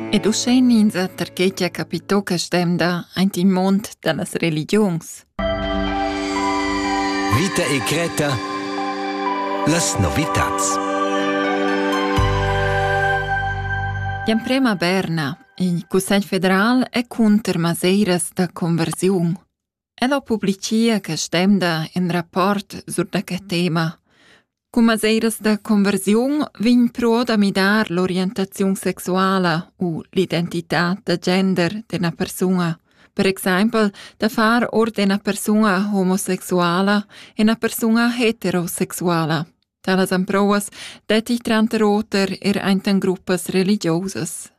Ed uschè ninza perche cha capitò che stemda aint in mond da las religiuns. Vita e Creta Las novitats L'emprema Berna, il Cussegl federal, è cunter maseiras da conversiun. Ella publichia quest'emda ün rapport sur da que tema. Cun maseiras da conversiun vegn però da midar l'orientaziun sexuala u l'identità da gender d'üna persuna. Per exaimpel da far or d'üna persuna homosexuala üna persuna heterosexuala. Talas emprouas detti tranter oter er aint in gruppas religiosas.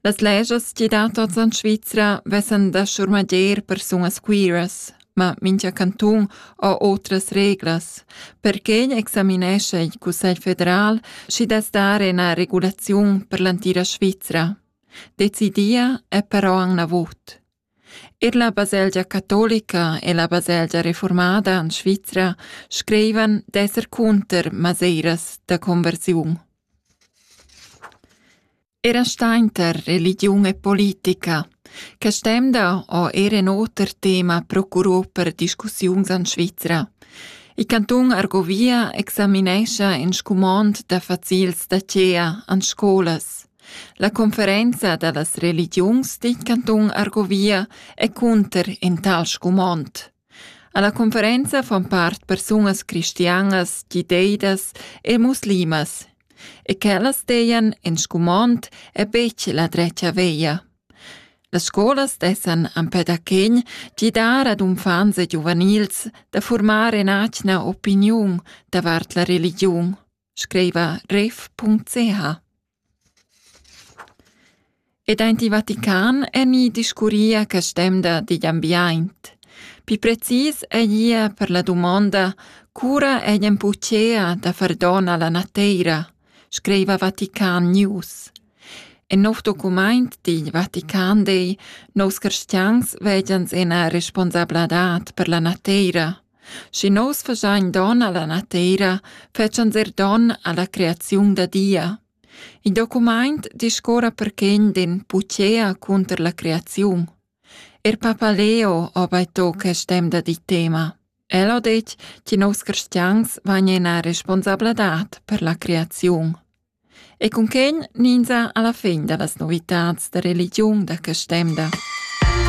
Las leschas chi dan tots in Svizra vessan da schurmader persunas quiras, ma mincha cantun ha otras reglas. Perque examinescha il Cussegl federal, schi dess dar üna regulaziun per l'entira Svizra. Decidia è però anc gnavut. Er la baselgia catolica e la baselgia reformada en Svizra screivan d'esser cunter maseiras da conversiun. Era sta inter religiun e politica, che stemda o era in oter tema procurò per discussiuns en Svizra. Il cantun Argovia examinescha in scumond da facils da cea en scolas. La conferenza dallas religiuns digl cantun Argovia è cunter in tal scumond. Alla conferenza fan part persunas cristianas, giudeidas e muslimas e quellas dejan in scumond è betg la drecia veia. Las scolas dessan empè da chegn gidar ad unfants e giuvenils da formar in'atgna opiniun davart la religiun. scriva ref.ch. Ed aint il Vatican emi discurria quest'emda digl ambiaint. Pi precis eia per la dumonda cura egn pucea da far don alla nateira, scriva Vatican News. En nov documaint digl Vatican Day, nous cristians vegians ena responsabladad per la nateira. Schi nus fagein don alla nateira, fetschans er don alla creaziun da Dia. Il documaint discuorra perquegn d'ün puchea cunter la creaziun. Er Papa Leo ho baito quest temp da di tema. El ho det che nos cristians vagnen a responsabladad per la creaziun. E cun quegn ninza alla fin da las novitats da religiun da quest temp da.